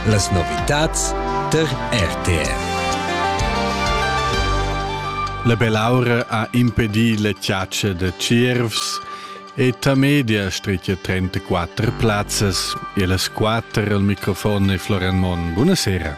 Las novitads tar RTR. La bell'aura ha impedì la chiaccia da Tschiervs e Tamedia stritga 34 plazzas e las quatter al microfon e Florian Monn. Buonasera.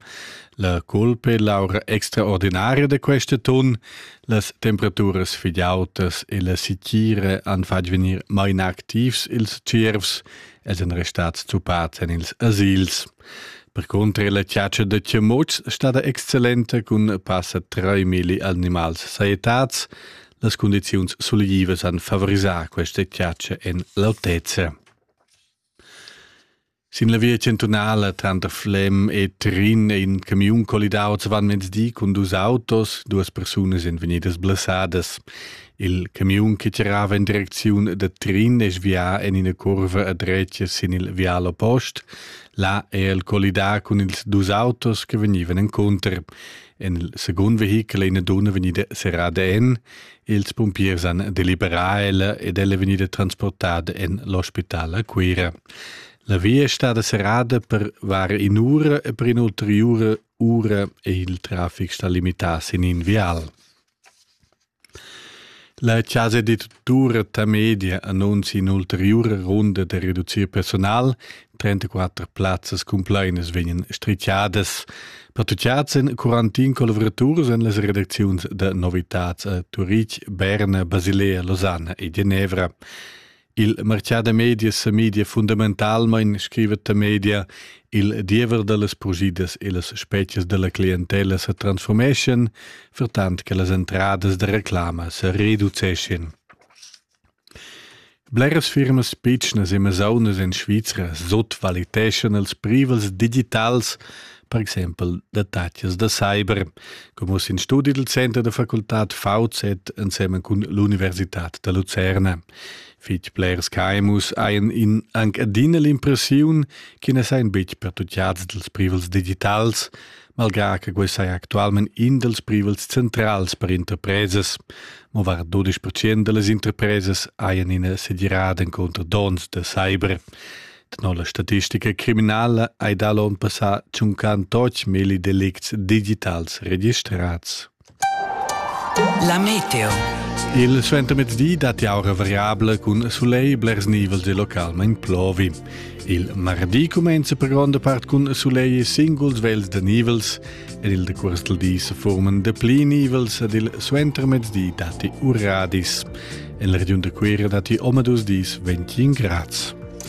La culpa è l'aura extraordinaria da quest atun. Las temperaturas fitg autas e la sitgira han fatg vegnir mai inactivs ils tschiervs ed èn restads zuppads en ils asils. Per cunter la chatscha da chamuts stada excellenta cun passa 3.000 animals sajettads. Las cundiziuns sulivas han favorisà questa chatscha en l'autezza. Sin la via chantunala tranter Flem e Trin è in camiun collidau di cun dus autos, duas persunas èn vegnidas blessadas. Il camiun che tirava in direcziun da Trin è svià en ina curva a dretga sin il vial oppost. Là è el collidà cun ils dus autos che vegnivan encunter. En il secund vehichel è ina dunna vegnida serrada en. Ils pumpiers han deliberà ella ed ella è vegnida transportada en l'ospital a Cuira. La via è stada serrada per var in'ura e per in'ulteriura ura è il traffic stà limità sin in vial. La Casa di Tortura Tamedia annuncia in'ulteriura runda da reducir personal 34 plazzas cumplainas vegnan strichadas. Pertuchads en quarantin collavoraturas en las redacziuns da novitads a Turitg, Berna, Basilea, Losanna e Genevra. Il marchà da medias sa media fundamentalmain scriva ta media il diever da las progidas e las spezias da la clientella sa transformeschan, vertant che las entradas da reclama sa reduceschin. Bleras firmas pitschnas e masaunas en Svizra sutvaliteschan ils privels digitals, per exempel datatschas da cyber, co mussa in studi dal center da facultad VZ ensemen cun l'Universitad da Lucerna. Fitg blers caimus hajan in anc adina l'impressiun che na sajan betg pertutgads dals privels digitals, malgrà che quei sei actualmein in dals privels centrals per interpresas. Mo var 12% dallas interpresas haien ina segirada encontro dons da cyber. Tenor la statistica criminala hai dal onn passà 50 milli delicts digitals registrats. La meteo. Il suentermezdi dat aura variabla cun soleil blers nivels e localment plovi. Il mardi cumenza per gronda part cun soleil e singuls vels da nivels ed il decurs del di se forman de pli nivels ed il suentermezdi dati uradis. En la regiun de Quera dati oma dus dis 21 grads.